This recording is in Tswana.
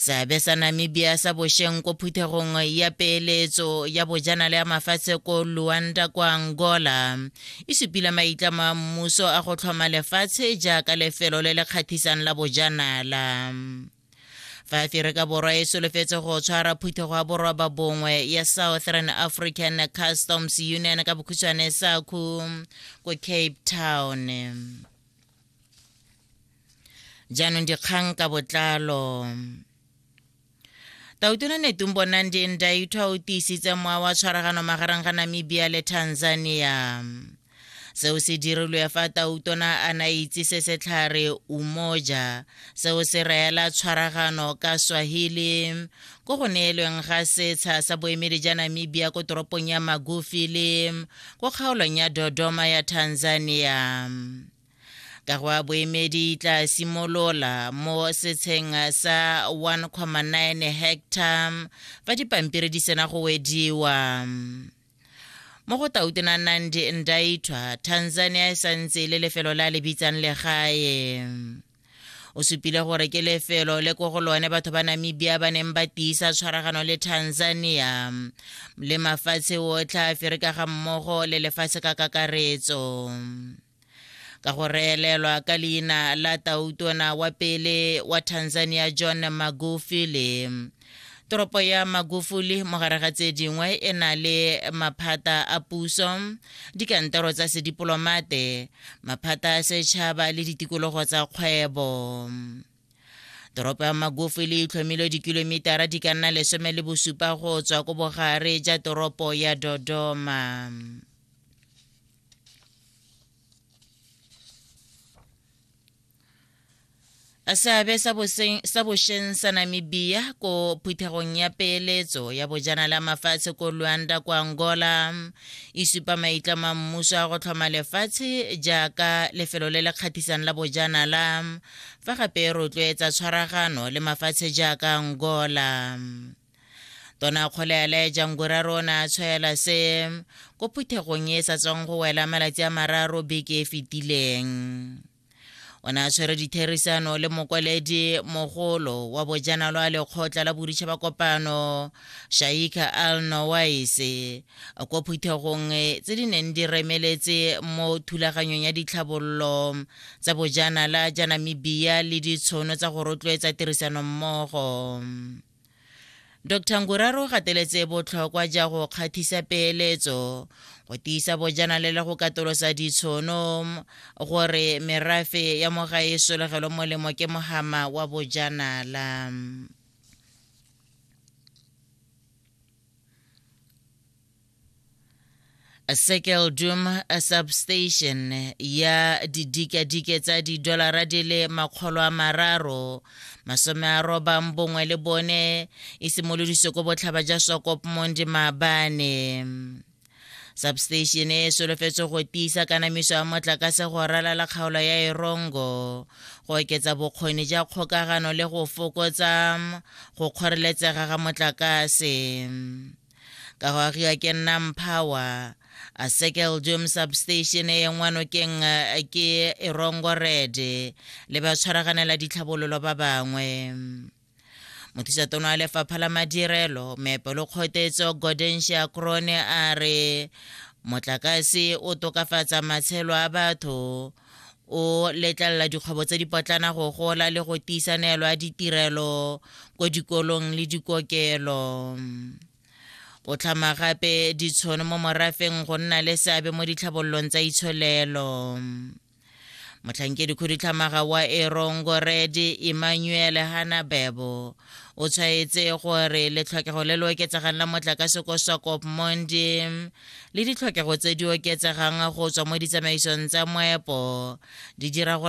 seabe sa namibia sa bošeng ko phuthegong ya peeletso ya bojanala ya mafatshe ko luanda kwa angola e supile maitlamo a mmuso a go tlhoma lefatshe jaaka lefelo le le kgathisang la bojanala fa aferika borwa e solofetse go tshwara phuthego ya borwa ba bongwe ya southern african customs union ka bokhutshwane saku ko cape town jaanong dikgang ka botlalo tautona netung bonang di ndaithwa o tiisitse mowa wa tshwaragano magareng ga namibia le tanzania seo se dirilwe fa tautona a na itse se setlhare umoja seo se reela tshwaragano ka swahili ko go neelweng ga setsha sa boemedi ja namibia ko toropong ya magufili ko kgaolong ya dodoma ya tanzania ka go a boemedi tla simolola mo setsheng sa 1,9 hectare fa dipampiri di sena go wediwa mo go tautona nandi ndaithwa tanzania e santse le lefelo la le bitsang legae o supile gore ke lefelo le ko go lone batho ba namibia ba neng ba tiisa tshwaragano le tanzania le mafatshe otlhe a ferika ga mmogo le lefatshe ka kakaretso ka go reelelwa ka leina la tautona wa pele wa tanzania john magufuli toropo ya magufuli mogare ga tse dingwe e na le maphata a puso dikantoro tsa sedipolomate maphata a setšhaba le ditikologo tsa kgwebo toropo ya magofi le itlhomile dikilomitara di ka nna lesome le bosupa go tswa ko bogare ja toropo ya dodoma seabe sa bošeng sa namibia ko phuthegong ya peeletso ya bojanala mafatshe ko luanda kwa angola e supa maitlamo a mmuso a go tlhoma lefatshe jaaka lefelo le le kgathisang la bojanala fa gape e rotloetsa tshwaragano le mafatshe jaaka angola tona kgole a laeja ngwera rona a tshwaela se ko phuthegong e sa tswang go wela malatsi a mararo beke e fetileng o ne a tshwere ditherisano le mokwaledi mogolo wa bojanalo a lekgotla la boditšha ba kopano shaika al nowaise ko phuthegong tse di neng di remeletse mo thulaganyong ya ditlhabololo tsa bojanala ja namibia le ditshono tsa go rotloetsa tirisanommogo dr nguraro o gateletse botlhokwa ja go kgathisa peeletso go tiisa bojanale le go katolosa ditshono gore merafe ya moga e solegelwe molemo ke mohama wa bojanala Circle Doom substation ya didikadike tsa didolara di le makgolo a mararo masome a robang bongwe le bone e simolodiswe ko botlhaba ja sokop mondi maabane substation e solofetse go tiisa kanamiso ya motlakase go ralala kgaolo ya erongo go oketsa bokgoni ja kgokagano le go fokotsa go kgoreletsega ga motlakase ka go agiwa ke nnang power a circle dome substation e yengwa nokeng ke erongo red le ba tshwaraganela ditlhabololo ba bangwe mothusaton wa lefapha la madirelo meepo le kgotetso godensia crone a re motlakase o tokafatsa matshelo a batho o letlelela dikgwebo tse dipotlana go gola le go tiisa neelo ya ditirelo ko dikolong le dikokelo o tlhama gape ditshono mo morafeng go nna le seabe mo ditlhabololong tsa itsholelo motlhankedi khudutlhamaga wa erongo rede emmanuel hanabebo o tshwaetse gore letlhokego le le oketsegang la motlakase ko sokop mondi le ditlhokego tse di oketsegang go tswa mo ditsamaisong tsa moepo di dira gore